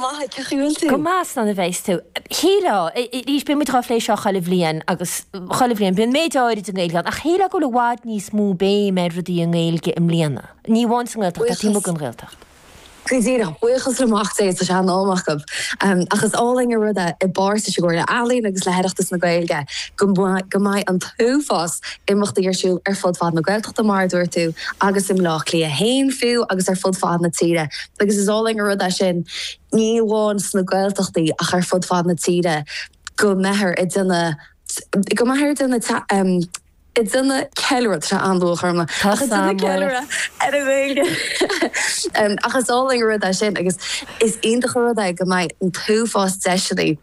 maith, cé chaoi bhfuil tú? Go maith, slán a bheas tú. Shílfeá, arís bíonn muid dhá phlé seo chuile bhliain agus chuile bhliain bíonn méid áirid i nGaeilge ann ach shílfeá go bhfuil i bhfad níos mó béim ar rudaí i nGaeilge i mbliana. Ní amháin sa nGaeltacht ach taobh amuigh den Ghaeltacht. Go díreach. Buíochas le Mac Dé tá sé in am acu. Ach is álainn an rud é, i bpáirt leis an gComhairle Ealaíon agus le hOireachtas na Gaeilge, go mbeidh go mbeidh an t-uafás imeachtaí ar siúl ar fud fad na Gaeltachta, mar a dúirt tú, agus i mBleá Cliath féin fiú agus ar fud fad na tíre. Agus is álainn an rud é sin, ní amháin sna Gaeltachtaí ach ar fud fad na tíre, go mbeifear ag déanamh, go mbeifear ag déanamh, ag déanamh ceiliúradh, tá sé an-luath orm, ach ag déanamh ceiliúradh ar an Ghaeilge. Ach is álainn an rud é sin agus is iontach an rud é go mbeidh an t-uafás deiseanna.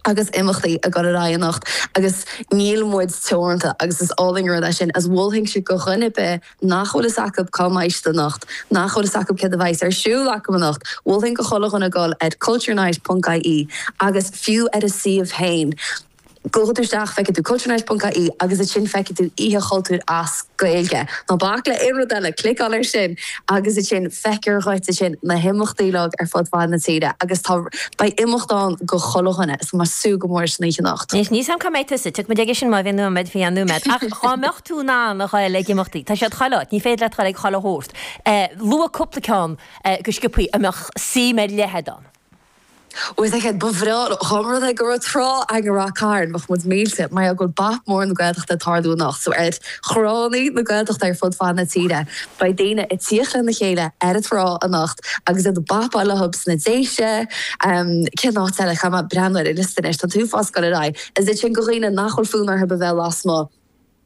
agus imeachtaí ag goil ar aghaidh anocht agus níl muid teoranta agus is álainn an rud é sin is mholfainnse go dhuine ar bith nach bhfuil fhios acu cá mbeidh siad anocht, nach bhfuil fhios acu céard a bheas ar siúl acu anocht, mholfainn go chuile dhuine dul ar culturenight.ie agus fiú ar a suíomh féin gabhfaidh tú isteach feicfidh tú culturenight.ie agus ansin feicfidh tú Oíche Chultúir as Gaeilge. Ná bac le aon rud eile, cliceáil air sin. Agus ansin, feictear dhuit ansin na himeachtaí uilig ar fud fad na tíre agus tá, beidh imeacht ann go chuile dhuine, so tá mé ag súil go mór leis an oíche anocht. Anois, níl fhios a'm cá mbeidh tusa, tiocfaidh muid aige sin má bhíonn nóiméad faoi cheann nóiméad, ach dhá mbeadh tú in ann a ghoil ag imeachtaí, tá siad chuile áit, ní féidir leat dul ag chuile shórt, luaigh cúpla ceann go sciopthaí a mbeadh suim ar leith a'd ann. Bhfuil fhios a'd céard, ba bhreá dhom rud é go raibh trá ag Ráth Cairn. Bheadh muid millte mar gheall go bhfuil Bap Mór na Gaeltachta ag tarlú anocht. So ar thránnaí na Gaeltachta ar fud fad na tíre, beidh daoine ag tíocht lena chéile ar an trá anocht agus iad ag bapáil leothub sna Déise. Cén áit eile? Caithfidh mé breathnú ar an liosta anois, tá an t-uafás ag dul ar aghaidh. Is ansin go dhaoine nach bhfuil fonn orthu a bheith lasmuigh.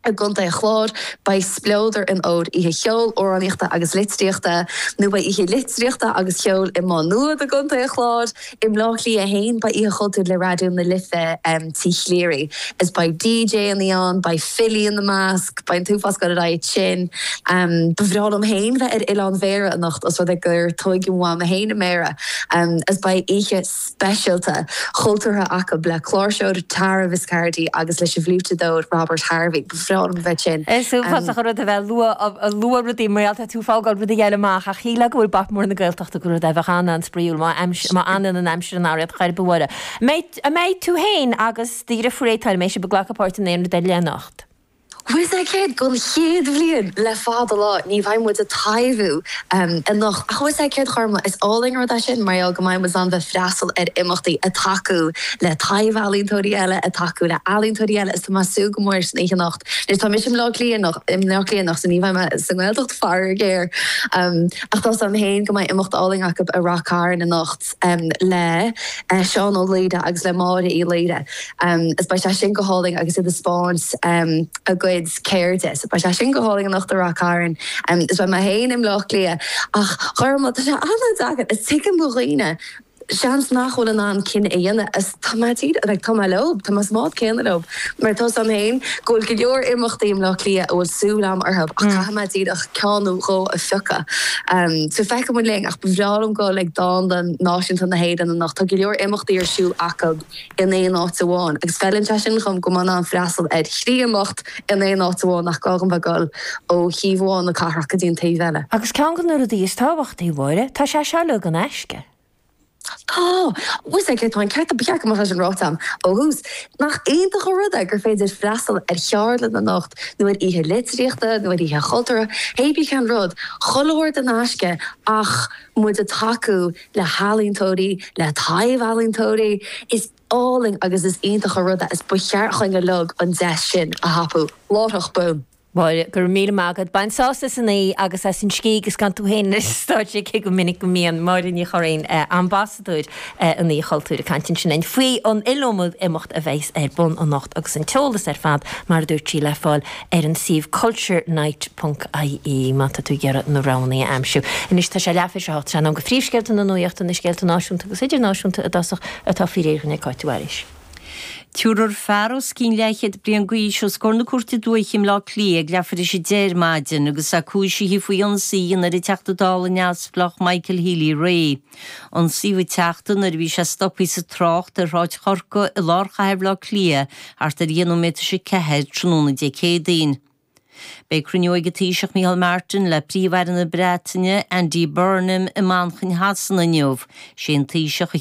I gContae an Chláir, beidh spleodar in ór Oíche Cheoil, Amhránaíochta agus Litríochta, nó beidh Oíche Litríochta agus Cheoil i Má Nuad i gContae an Chláir. I mBleá Cliath féin, beidh Oíche Chultúir le Raidió na Life Tí Chléirigh. Is beidh DJ-annaí ann, beidh filí ina measc, beidh an t-uafás ag goil ar aghaidh ansin. Ba bhreá liom féin bheith ar Oileán Bhéarra anocht, os rud é gur tóigeadh mo mham féin i mBéarra. Is beidh Oíche. speisialta chultúrtha acu le cláirseoir Tara Viscardi agus leis an bhfliúiteadóir Robert Harvey. Ba bhreá liom a bheith ansin. Is uafásach an rud é a bheith ag lua rudaí mar gheall tá tú ag fágáil rudaí eile amach. Ach shílfeá go bhfuil Bap Mór na Gaeltachta gur rud é a bheadh an-, an-spraíúil má fhanann an aimsir in araíocht chor ar bith, a Mháire. An mbeidh tú féin agus do dheirfiúr Étáin, an mbeidh sibh ag glacadh páirt in aon rud ar leith anocht? Bhfuil fhios a'd céard, don chéad bhliain le fada lá, ní bheidh muid a' taibhiú anocht, ach bhfuil fhios a'd céard, a Ghormfhlaith, is álainn an rud é sin, mar gheall go mbeidh muid in ann bheith freastal ar imeachtaí a' tacú le taibh-ealaíontóirí eile, a' tacú le ealaíontóirí eile, is tá mé a' súil go mór leis an oíche anocht, anois, tá mise i mBleá Cliath, i mBleá Cliath anocht, so ní bheidh mé sa nGaeltacht, faraor géar, ach tá súil agam fhéin go mbeidh imeacht álainn acub i Rath Cairn anocht. le Seán Ó Laoire agus le Máire Uí Laoire. Beidh sé sin go hálainn agus iad a spáint a gcuid ceirde. Beidh sé sin go hálainn anocht i Rath Cairn. Beidh mé féin i mBleá Cliath. Ach chuir mo, tá sé an-deacair, is tuigim do dhaoine, seans nach bhfuil in ann cinneadh a dhéanamh. Tá mé díreach, tá mé leob, tá mé sa mbád céanna leob, mar tá 's a'm féin go bhfuil go leor imeachtaí i mBleá Cliath a bhfuil súil a'm orthub ach caithfidh mé díreach ceann nó dhó a phiocadh. Em, so feicfidh muid linn ach ba bhreá liom dul ag Dánlann Náisiúnta na hÉireann anocht, tá go leor imeachtaí ar siúl acub in aon áit amháin agus feileann sé sin dhom go mbeidh mé in ann freastal ar thrí imeacht in aon áit amháin nach gá dhom bheith ag dul ó thaobh amháin na cathrach go dtí an taobh eile. Agus ceann de na rudaí is tábhachtaí, a Mháire, tá sé seo uilig in aisce. Tá! Ós rud é, tá an ceart agat, ba cheart go mbeadh sé sin ráite agam ó thús, nach iontach an rud é gur féidir freastal ar cheardlann anocht, nó ar oíche litríochta, nó ar oíche chultúrtha, pé bí cén rud, chuile rud in aisce, ach muid ag tacú le healaíontóirí, le taibh-ealaíontóirí. Is álainn agus is iontach an rud é, is ba cheart dhúinn uilig an deis sin a thapú. Láithreach bonn. Máire, Go raibh míle maith agat. Bain sásamh as an oíche agus as an scíth agus gan tú féin ar an stáitse cé gur minic go mbíonn Máire Ní Churraoin, Ambasadóir an Oíche Chultúir ag caint ansin faoi an iliomad imeacht a bheas ar bun anocht agus an t-eolas ar fad, mar a dúirt sí, le fáil ar an suíomh culturenight ponc ie má tá tú ag iarraidh na roghanna a aimsiú. Anois tá sé leathuair tar éis a hocht is in am do phríomhscéalta na nuachta, na scéalta náisiúnta agus idirnáisiúnta i dtosach atá faoi réir dhúinn ag Cáit Mhaorais. Tabharfar fear os cionn leathchéad bliain d'aois os comhair na Cúirte Dúiche i mBleá Cliath ag leathuair tar éis a deich ar maidin agus é cúisithe faoi ionsaí a dhéanamh ar an Teachta Dála neamhspleách Michael Healy-Rae. Ionsaíodh an Teachta nuair a bhí sé stoptha sa trácht ar Shráid Chorcaí i lár chathair Bhleá Cliath thart ar dheich nóiméad tar éis a ceathair tráthnóna Dé Céadaoin. Beidh cruinniú ag an Taoiseach Micheál Martin le Príomh-Aire na Breataine Andy Burnham i Manchain Shasana inniu. Is é an Taoiseach a.